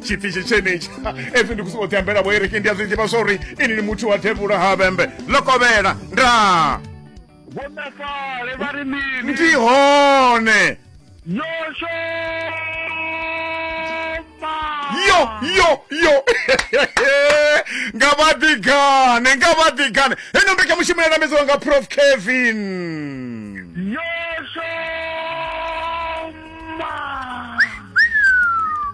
tshipfisi tshenetshi ezwi ndi kusi oṱhe ambela vhoereke ndi a zwi ḓivha zwauri ini ni muthu wa devhula ha vhembe ḽo kovhela ndaa vhonakale vha ri mini ndi hone yosho yo yo yo nga vha ḓigane nga vha ḓigane heno mbekanyamushumo ya namedziwa nga prof kevin yosho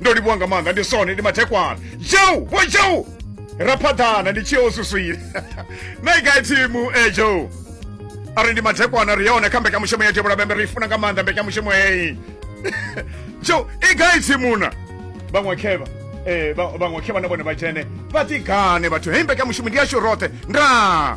ndo livhuwa nga maanḓa ndi sone ndi mathekwana joe vho joe ra phaḓana ndi tsheo suswile naigai thimu e eh, joe a ri ndi mathekwana ri yone kha mbekanyamushumo ya tevhula bembe ri funa nga maanḓa mbekanyamushumo heyi joe i gai thimuna vhaṅwe khevha eh, vhaṅwe khevha na vhone vha dzhene vha ḓigane vhathu heyi mbekanyamushumo ndi yashu roṱhe ndaa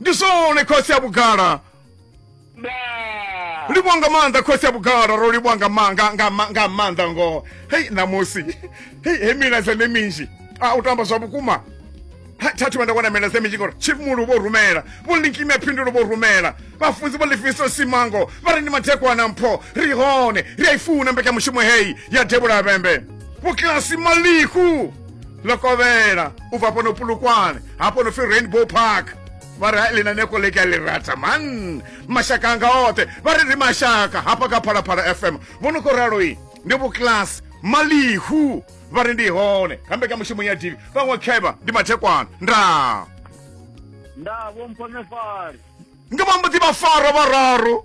ndi zwone khosi ya vhugala nda livhwa nga maanḓa khosi ya vhugala ro livhwa nga ma- nga- nga ma- nga maanḓa ngoho hei ṋamusi hei he milaedza ndi minzhi a u tamba zwa vhukuma Ha, tha thu vha nda wana milaedza minzhi ngori chief mulu vho rumela vho linkimi ya phindulo vho rumela vhafunzi vho lifiso simango vha ri ndi madekwana mpho ri hone ri a i funa mbekanyamushumo heyi ya devhula vhembe vhokilasi maliku ḽo kovhela u bva fhano pulukwane hafho no pfi rainbow park vha ri ḽi na neko ḽe ka ḽi rata man mashaka anga oṱhe vha ri ri mashaka hafha kha phalaphala fm vho no khou ralo i ndi vhuklasi malihu vha ri ndi hone kha mbekanyamushumo ya divi vhaṅwe khevha ndi mathekwana ndaa ndaa vho mpho nefari nga vha mbo ḓi vha fara vhararu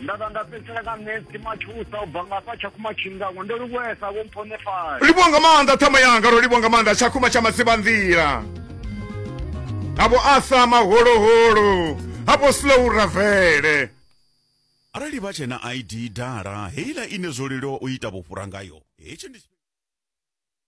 nda vha nda fhedzisela nga nesi matshusa u bva nga fha tshakhuma tshingango ndo livhuesa vho mphonefali livhuwa nga maanḓa ṱhama yanga ro livhuwa nga maanḓa tshakhuma tsha madziba nḓila havo asa maholoholo havo slow ravele arali vha tshena id dala heila ine zwo leluwa u ita vhufhura ngayo hetshi ndi